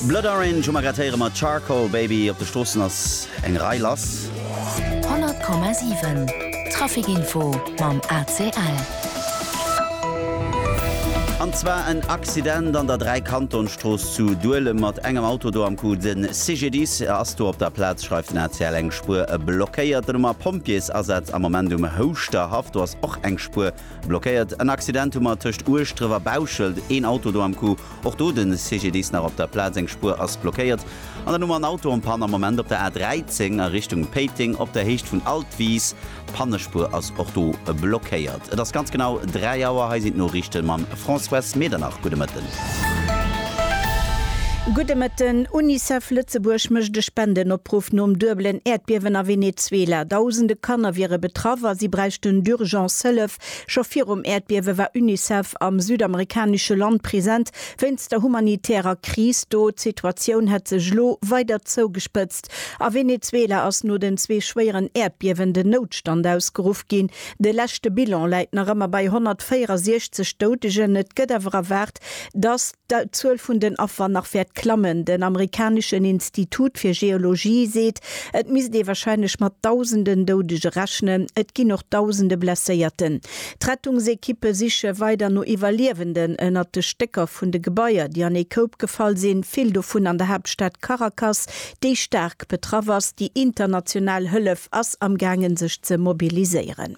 Blood Orange hu mer grad héiere mat Charcoal Baby. Op de Stroossen ass eng Rei lass. 100,7 Traficinfo mam ACL. An zwar en Accident an der Dräikantonstrooss zu Duelem mat engem Auto do am Coup. De CGDIS ass do op der Plaz, schreift den ACL. Eng Spuer blockéiert. D'Nummer Pompjeesasaz am Moment um Houschter Haff. Do ass och eng Spuer. Blockéiert, en Accident hu mer tëscht Ueschdref a Bauschelt, een Auto do am Coup, och do de CGDIS nach op der Plaz, eng Spuer ass blockéiert. An dann hu mer en Auto en panne am Moment op der A13 a Richtung Péiteng op der Héicht vun Altwis, d'Pannespuer ass och do blockéiert. Et ass ganz genau 3 Auer, hei sinn d'Noriichte mam François Medernach. Gudde Mëtten. Gudde Mëtten. Unicef Lëtzebuerg mécht e Spendenopruff nom duebelen Äerdbiewen a Venezuela. Dausende Kanner wiere betraff a si bräichten d'Urgence Hëllef. Scho virum Äerdbiewe war Unicef am südamerikanesche Land present wéinst der humanitärer Kris do. D'Situatioun hätt sech elo weider zougespëtzt. A Venezuela ass no den zwee schwéieren Äerdbiewen den Noutstand ausgeruff ginn. De leschte Bilan läit nach ëmmer bei 164 Doudegen. Et gëtt awer erwaart, datt d'Zuel vun den Affer nach wäert klammen. Den amerikaneschen Institut fir Geologie seet, et misst ee warscheinlech mat Dausenden Doudege rechnen. Et ginn och Dausende Blesséierten. D'Rettungsekippe siche weider no Iwwerliewenden ënnert de Stécker vun de Gebaier, déi an ee Koup gefall sinn, vill dovun an der Haaptstad Caracas, déi staark betraff ass. Déi international Hëllef ass am gaangen sech ze mobiliséieren.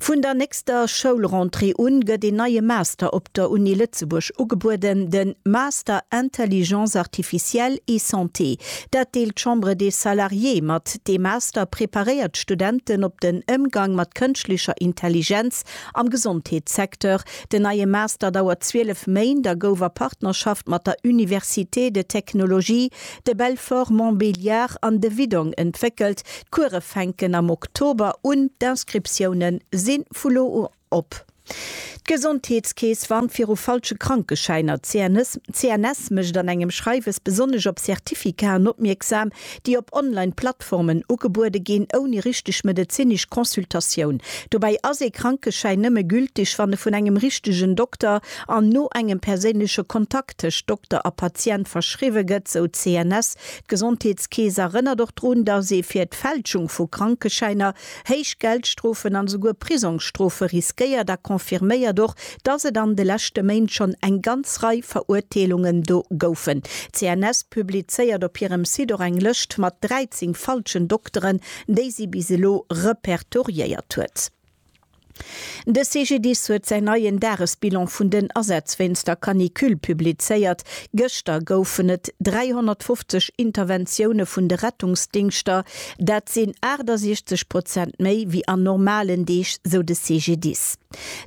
Vun der nächster Schoulrentrée un gëtt een neie Master op der Uni Lëtzebuerg ugebueden, de Master Intelligence artificielle et Santé. Dat deelt d'Chambre des Salariés mat. Dee Master preparéiert d'Studenten op den Émgang mat kënschtlecher Intelligenz am Gesondheetssecteur. Den neie Master dauert 12 Méint a gouf a Partnerschaft mat der Université de Technologie de Belfort-Montbéliard an de Widong entwéckelt. D'Kuere fänken am Oktober un. D'Inscriptioune si vu lo un op. D'Gesondheetskeess warnt viru falsche Krankeschäiner. D'CNS mécht an engem Schreiwes besonnesch op Certificaten opmierksam, déi op Online-Plattformen, Plattformen ugebuede ginn, ouni richteg medezinesch Consultatioun. Dobäi ass ee Krankeschäin nëmme gültig, wann e vun engem richtegen Dokter an no engem perséinleche Kontakt tëscht Dokter a Patient verschriwwe gëtt, sou d'CNS. D'Gesondheetskeess erënnert och drun, datt ee fir d'Fälschung vu Krankeschäiner héich Geldstrofen an esouguer Prisongsstrofe riskéiert a confirméiert och, dass et an de leschte Méint schonn eng ganz Rei Verurteelungen do goufen. D'CNS publizéiert op hirem Site och eng Lëscht mat 13 falschen Dokteren, déi si bis elo repertoriéiert huet. De CGDIS huet säin neien Dagesbilan vun den Asätz wéinst der Canicule publizéiert. Gëschter goufen et 350 Interventioune vun de Rettungsdingschter. Dat sinn 68 Prozent méi wéi an normalen Deeg, sou de CGDIS.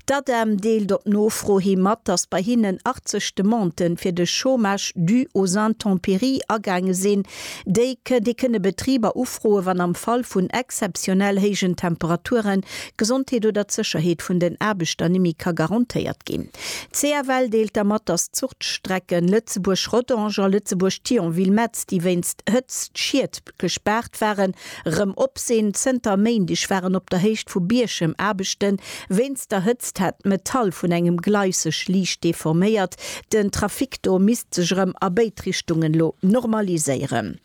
D'ADEM deelt op Nofro hi mat, datt bei hinnen 80 Demandë fir de Chômage dû aux intempéries agaange sinn. Déi kënn, déi kënne Betriber ufroen, wann am Fall vun exzeptionell héijen Temperaturen d'Gesondheet oder d'Sécherheet vun den Aarbechter nimi ka garantéiert ginn. D'CFL deelt der mat, dass d'Zuchtstrecken Lëtzebuerg-Rodange a Lëtzebuerg-Thionville-Metz, déi wéinst Hëtztschied gespaart waren, Rem opsinn, Zënter Méindeg waren op der Héicht vu Bierchem Aarbechten. Wéinst der Hëtzt hat d'Metall vun engem Gleis sech liicht deforméiert. Den Trafic do misst sech erëm a béid Richtungen lo normaliséieren.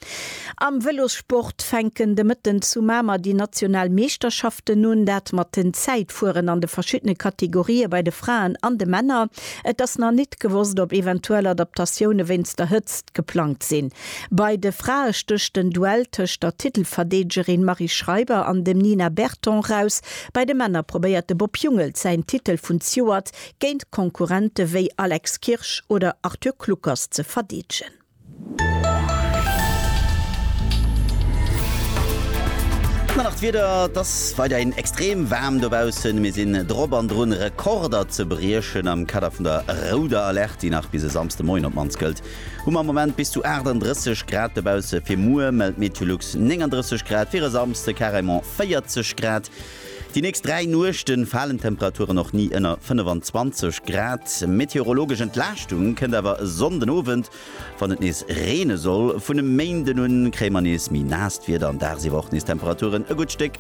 Am Vëlossport fänken de Mëtten zu Mamer déi national Meeschterschaften un. Dat mat den Zäitfueren an de verschiddene Kategorië bei de Fraen an de Männer. Et ass nach nit gewosst, ob eventuell Adaptatioune wéinst der Hëtzt geplangt sinn. Bei de Frae stécht den Duell tëscht der Titelverdeedegerin Marie Schreiber an dem Nina Berton raus. Bei de Männer probéiert de Bob Jungels säin Titel vun Zjuert géint Konkurrente wéi Alex Kirsch oder Arthur Kluckers ze verdeedegen. Ëmmer nach d'Wieder, et ass weiderhin extrem waarm dobaussen. Mir sinn drop an drun Rekorder ze briechen am Kader vun der rouder Alerte, déi nach bis e Samsdemoien op mannst gëllt. Hu mer am Moment bis zu 38 Grad dobausse, fir muer mellt d'Meteolux 39 Grad, fir e Samsde carrément 40 Grad. Déi nächst dräi Nuechte falen d'Temperaturen och ni ënner 25 Grad. Meteorologesch Entlaaschtung kënnt awer e Sonnden Owend, wann et nees reene soll. Vun e Méinden un kréie mer nees méi naasst Wieder an dagsiwwer och nees Temperaturen e gutt Stéck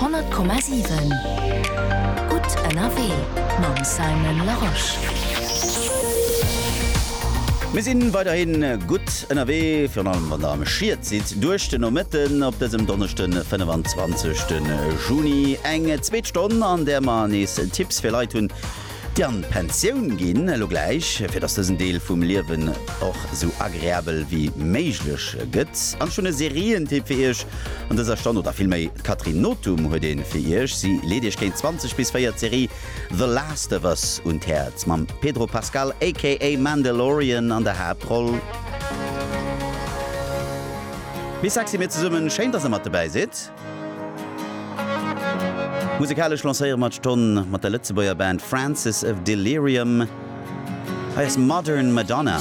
100,7 Gutt ënnerwee mam Simon Larosche. Mir si weiderhi gutt ënnerwee, virun allem wann der am Schiet sidd duerch de Nomëtten op dësem Donneschde 25 Juni. Eng zweet Stonn, an där mer nees Tipps fir Leit hunn, Déi an d'Pensioun ginn elo gläich, fir datt dësen Deel vum Liewen och esou agreabel wéi méiglech gëtt. An ech hunn e Serientipp fir Iech an dëser Stonn, oder vill méi, d'Catherine Nothum huet ee fir Iech. Si leet Iech géint 20 bis 4 d'Serie The Last of Us un d'Häerz, mam Pedro Pascal aka Mandalorian an der Haaptroll. Bisexy, mir zesummen, schéin, datt Der mat dobäi sidd. Musekalesch lancéiere mer d'Stonn mat der Lëtzebuerger Band Francis of Delirium. Hei ass Modern Madonna.